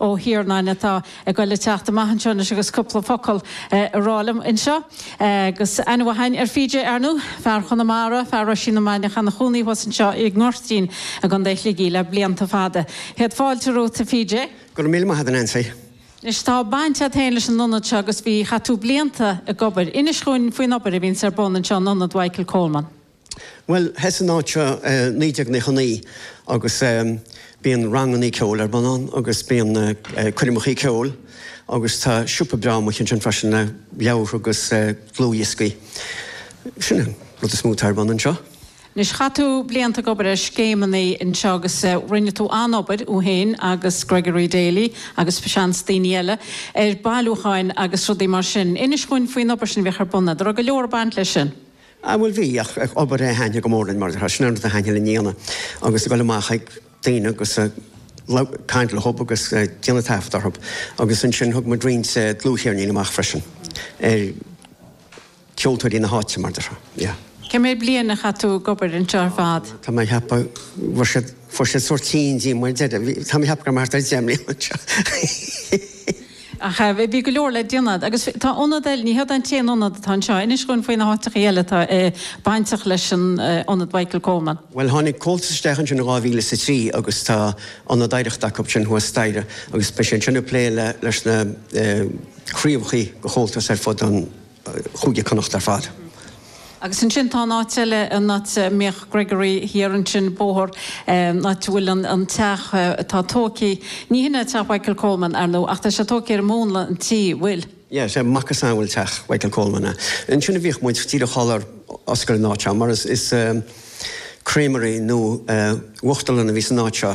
Ó hIarnáin atá ag goil le teacht amach anseo anois agus cúpla focal a rá liom anseo. Agus aithne mhaith againn ar PJ, ar ndú, fear Chonamara, fear Roisín na Mainiach ina chónaí thuas anseo i nGoirtín i gContae Shligigh le blianta fada. Céad fáilte romhat, a PJ. Go raibh míle maith a'd, a Neansaí. Anois, tá baint a'd féin leis an ionad seo agus bhí, chaith tú blianta ag obair. Inis dhúinn faoin obair a bhíonns ar bun anseo in Ionad Mhichael Coleman. Bhuel, thosaigh an áit seo i 1999 agus bíonn rangannaí ceoil ar bun ann agus bíonn coirmeacha ceoil agus tá siopa breá amuigh ansin freisin le leabhartha agus dlúthdhioscaí. Sin an rud is mó atá ar bun anseo. Anois, chaith tú blianta ag obair ar scéimeannaí anseo agus rinne tú an-obair, thú fhéin agus Gregory Daly agus seans daoine eile, ar bhailiúcháin agus rudaí mar sin. Inis dhúinn faoin obair sin a bhíodh ar bun, mar go raibh go leor ag baint leis sin. Á bhuel, bhí, ach ag obair a haithne go mór linn, mar atá, sin an rud a sheinneann an fhíona, agus ag dul amach ag daoine agus a caint le hub agus déanamh taifead orthu. Agus ansin thug muid roinnt dlúthcheirnín amach freisin ar cheoltóirí na háite, mar atá, yeah. Cé mhéad bliain a chaith tú ag obair anseo ar fad? Tá mé ag ceapadh, bhfuair siad, fuair siad sórt réidh liom ar deireadh, bhí, tá mé ag ceapadh go raibh mé thart ar deich mbliana anseo. Ach bhí go leor le déanamh. Agus tá ionad eile, ní hé an t-aon ionad atá anseo, inis dhúinn faoi na háiteachaí eile atá bainteach leis an ionad Mhichael Coleman. Bhuel, tháinig Comhaltas isteach ansin in dhá mhíle is a trí agus tá ionad oidhreachta acu ansin thuas staighre agus bíonn sé sin ag plé leis na craobhachaí de Chomhaltas ar fud an Cúige Connacht ar fad. Agus ansin tá an áit eile, an áit a mbíodh Gregory thiar ansin, bóthar, an áit a bhfuil an teach atá tógtha, ní hin é teach Mhichael Coleman, ar ndóigh, ach tá sé tógtha ar mhúnla an tí, bhfuil? Yeah, is é macasamhail teach Mhichael Coleman é. Ansin a bhíodh muid, díreach sular osclaíodh an áit seo, mar is creamery nó uachtarlann a bhí san áit seo.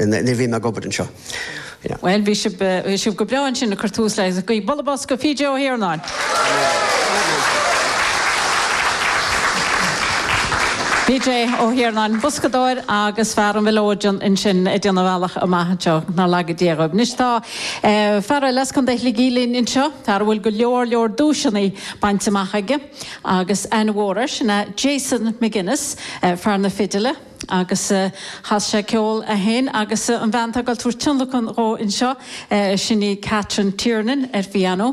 Nuair a bhí mé ag obair anseo, yeah. Bhuel, bhí sibh, bhí sibh go breá ansin ag cur tús le, a gcuid, bualadh bos do PJ Ó hIarnáin! PJ Ó hIarnáin, boscadóir agus fear an mhileoidean ansin ag déanamh a bhealach amach anseo, nár laga Dia sibh. Anois tá fear eile as Contae Shligigh linn anseo, fear a bhfuil go leor leor duaiseanna bainte amach aige agus aithne mhór air, sin é Jason McGuinness, fear na fidile. agus casfaidh sé ceol é féin agus an bhean atá ag dul tabhairt tionlacan dhó anseo, sin í Catherine Tiernan ar phianó.